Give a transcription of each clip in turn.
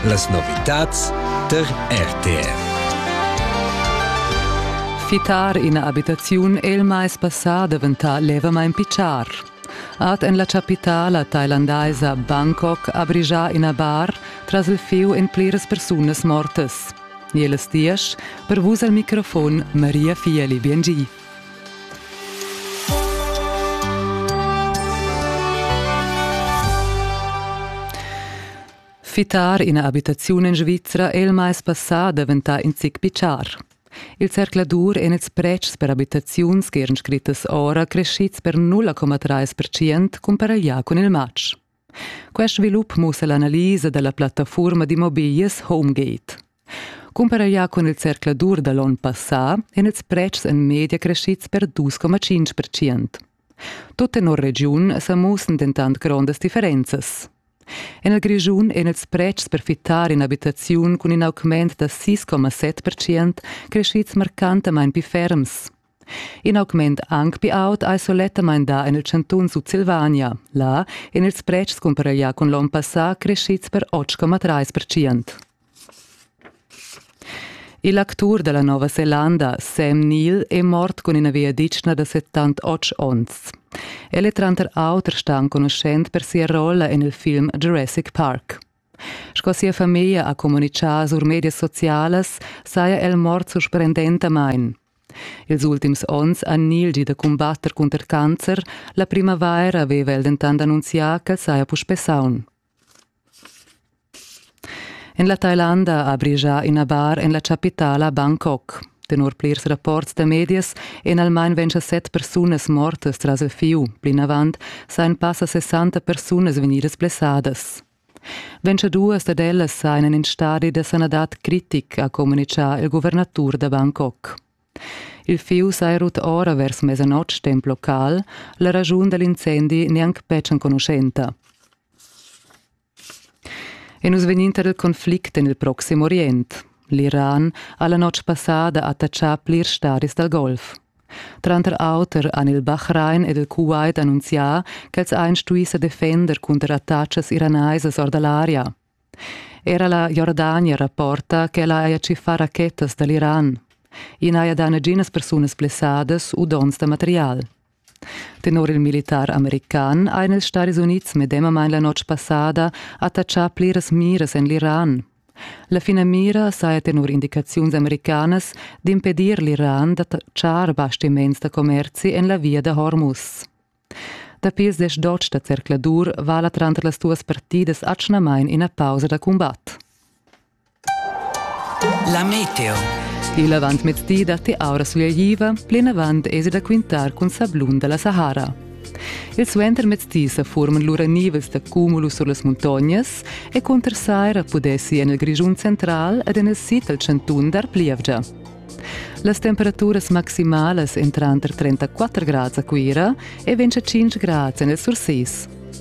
Las novitads tar RTR. Fittar ina abitaziun è il mais passà daventà levamain pitschar. Ad en la chapitala thailandaisa Bangkok ha brigià ina bar tras il fieu en pliras persunas mortas. Jeles diesch, per vus al microfon Maria Fieli Biengi. Fittar ina abitaziun en Svizra è il mais passà daventà in zic pichar. Il zercladur en ils pretschs per abitaziuns che eran scrittas ora crescids per 0,3% cumparaglià cun il matg. Quest svilup mussa l'analisa da la plattafurma d'immobiglias Homegate. Cumparaglià cun il zercladur da l'onn passà èn ils pretschs en media creschids per 2,5%. Tut tenor regiun sa mussan dentant grondas differenzas. En il Grischun èn ils pretschs per fittar in'abitaziun cun in augment da 6,7% creschids marcantamain pli ferms. In augment anc pli aut ei sulettamain dà en il chantun Sutsilvania. Là èn ils pretschs cumpareglià cun l'onn passà creschids per 8,3%. Il actur da la Nova Zelanda, Sam Neill, è mort cun ina viaditschna da 78 onns. El è tranter auter stà enconuschent per sia rolla en il film Jurassic Park. Sco sia famiglia ha communitgà sur medias socialas, saja el mort surprendentamain. Ils ultims onns ha Nil gì da cumbatter cunter cancer, la primavaira aveva el dentant annunzià ch'el saja puspè saun. En la Thailanda ha brigià ina bar en la chapitala Bangkok. Tenor plirs rapports da medias èn almain ventg set persunas mortas tras il fieu. Plinavant sajan passa 60 persunas vegnidas blessadas. Ventgaduas dad ellas ein en in stadi da sanadad critic, ha communitgà il guvernatur da Bangkok. Il fius ei rut ora vers mesanotg temp local, la ragiun dall'incendi neanc betg enconuschenta. E nus vegninter il conflict en il Proxim Orient. L'Iran ha la notg passada attachà plirs stadis dal Golf. Tranter auter han il Bahrain ed il Kuwait annunzià ch'els ein stui sa defender cunter attacas iranaisas or dall'aria. Era la Jordania rapporta ch'ella haja tschiffà rachetas dall'Iran. I n'haja dà naginas persunas blessadas u donns da material. Tenor il militar american ein ils Stadis Unids medemamain la notg passada attachà pliras miras en l'Iran. La finamira saja tenor indicaziuns americanas d'impedir l'Iran da tschar bastiments da commerzi en la via da Hormuz. Dapi ses dotg da zercladur vala tranter las duas partidas atgnamain ina pausa da cumbat. La meteo. Il avantmezdi datti aura sugliaiva, plinavant esi da quintar cun sablun da la Sahara. Il suentermezdi sa forman lura nivels da cumulus sur las muntognas e cunter saira pudessi en il Grischun central ed en il sid dal chantun dar plievgia. Las temperaturas maximalas èn tranter 34 grads a Cuira e 25 grads en il Sursis.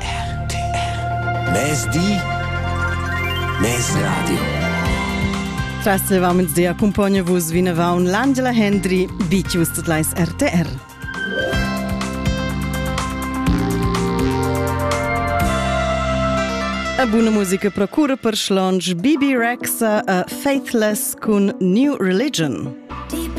RTR Mezdi Mez Radio Trassevam dia accompagna vos vinavon l'Angela Hendry, Bicius tot lais RTR. A buna musica procura per slonge BB Rexa a Faithless cun New Religion. Deep in